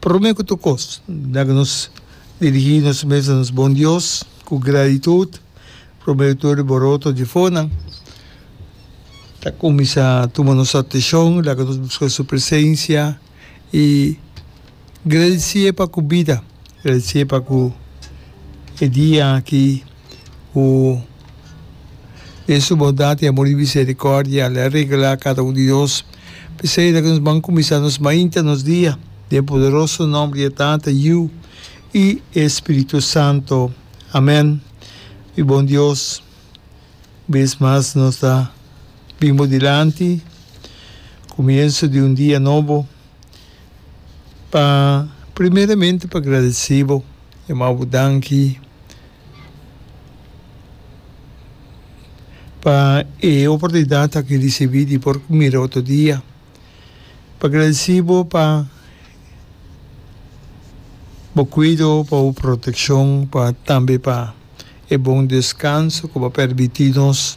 Prome ku tur kos, na ke nos dirigí nos mes na nos bon Dios ku gratitut, promero tur e boroto di fonan ta kuminsá tuma nos ateshon, laga nos buska su presensia i gradisié pa ku bida, gradisié pa ku e dia aki. ku den su bondat i amor i misericordia el a regla cada un di nos. P'esei ta ke nos ban kuminsá nos mainta nos dia den poderoso nomber di e Tata, Yu i e Spiritu Santo. Amèn. Mi bon Dios, un bes mas nos ta bin bo dilanti, kumienso di un dia nobo. Pa primeramente pa gradeci bo e mau bo danki pa e oportunidad aki ricibi di por mira otro dia pa gradeci bo pa bo cuido pa bo proteccion pa tambe pa e bon descanso cu bo permiti nos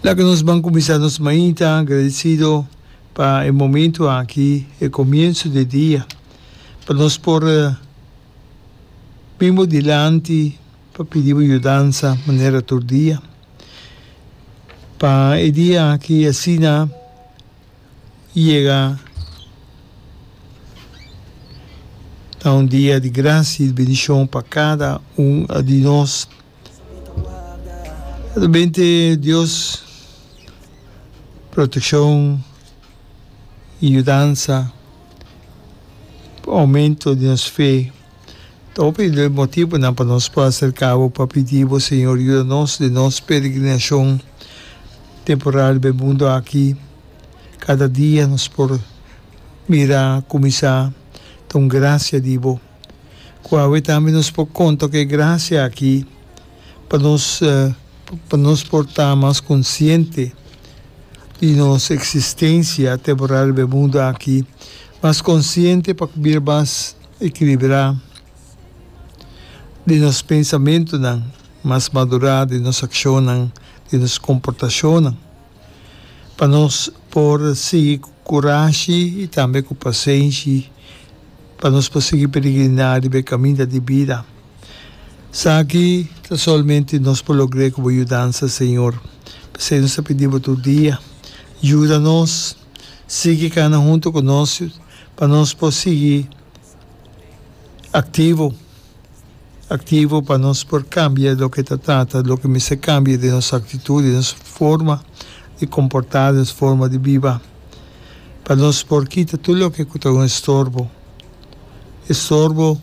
lak nos ban cuminsa nos mainta agradecido. Pa e momento aki, e comienzo di e dia, pa nos por bin bo dilanti pa pidi bo yudansa manera tur dia. Pa e dia aki asina yega na un dia di gracia y bendicion pa cada un di nos. Ta bente Dios protekshon i yudansa, oumento di nos fe. Ta hopi motibunan pa nos por aserká bo pa pidi bo, Señor, yuda nos den nos peregrinashon temporal den e mundu aki. Kada dia nos por mira kuminsá ta un grasia di bo. Ku awe tambe nos por konta ku e grasia aki pa nos pa nos por ta mas konsiente di nos eksistensia temporal riba e mundu aki, mas konsiente pa bira mas ekilibrá den nos pensamentunan, mas madurá den nos akshonnan, den nos komportashonnan. pa nos por sigui ku kurashi i tambe ku pasenshi pa nos por sigui peregriná riba e kaminda di bida. Saki ta solamente nos por logr'é ku bo yudansa, Señor. P'esei nos ta pidi bo tur dia, yuda nos, sigui kana huntu ku nos pa nos por sigui aktivo. Aktivo pa nos por kambia loke ta trata, loke mester kambia den nos aktitut, den nos forma di komportá, den nos forma di biba, pa nos por kita tur loke ku ta un estorbo, estorbo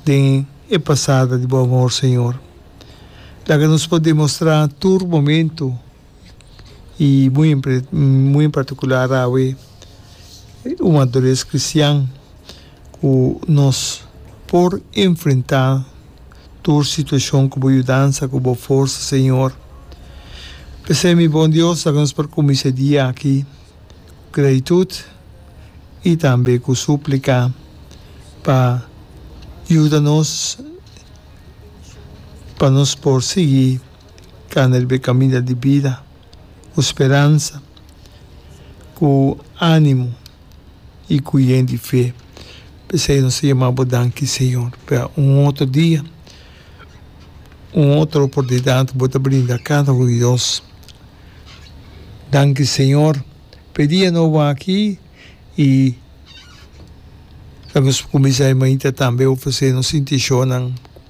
den e pasada di Bo amor, Señor. Laga nos por demostrá tur momentu i muy muy en particular awe un madures cristian cu nos por enfrenta tur situacion cu bo yudansa cu bo forsa Señor. P'esei mi bon Dios sa cu nos por cuminsa e dia aki cu gratitud i tambe cu suplica pa yuda nos pa nos por sigui kana riba e kaminda di bida ku speransa, ku ánimo i ku yen di fe. P'esei nos ta yama bo danki, señor, pa un otro dia, un otro oportunidat bo ta brinda kada un di nos. Danki, señor, p'e dia nobo aki i ta nos kuminsá e mainta tambe ofresé nos intenshonan.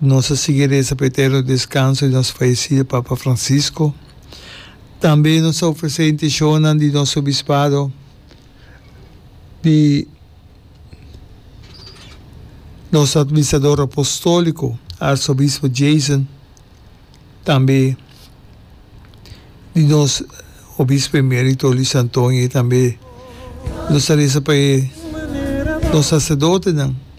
Nos a sigui reza pa e eterno descanso di nos fallecida Papa Francisco. Tambe nos a ofrece e intencionnan di nos Obispado di nos Administrador Apostolico Arzobispo Jason, tambe di nos Obispo Emerito Luis Antonio y tambe nos a reza pa e nos Sacerdotenan.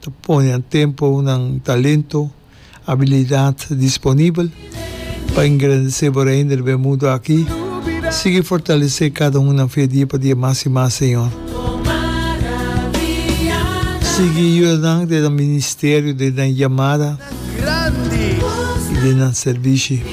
ta ponenan tempu, nan talento, abilidat disponibel pa engrandesé bo Reino riba e mundu aki. Sigui fortalesé kada un nan fe dia pa dia mas i mas, Señor. Sigui yuda nan den nan ministerio, den nan yamada i den nan servishi.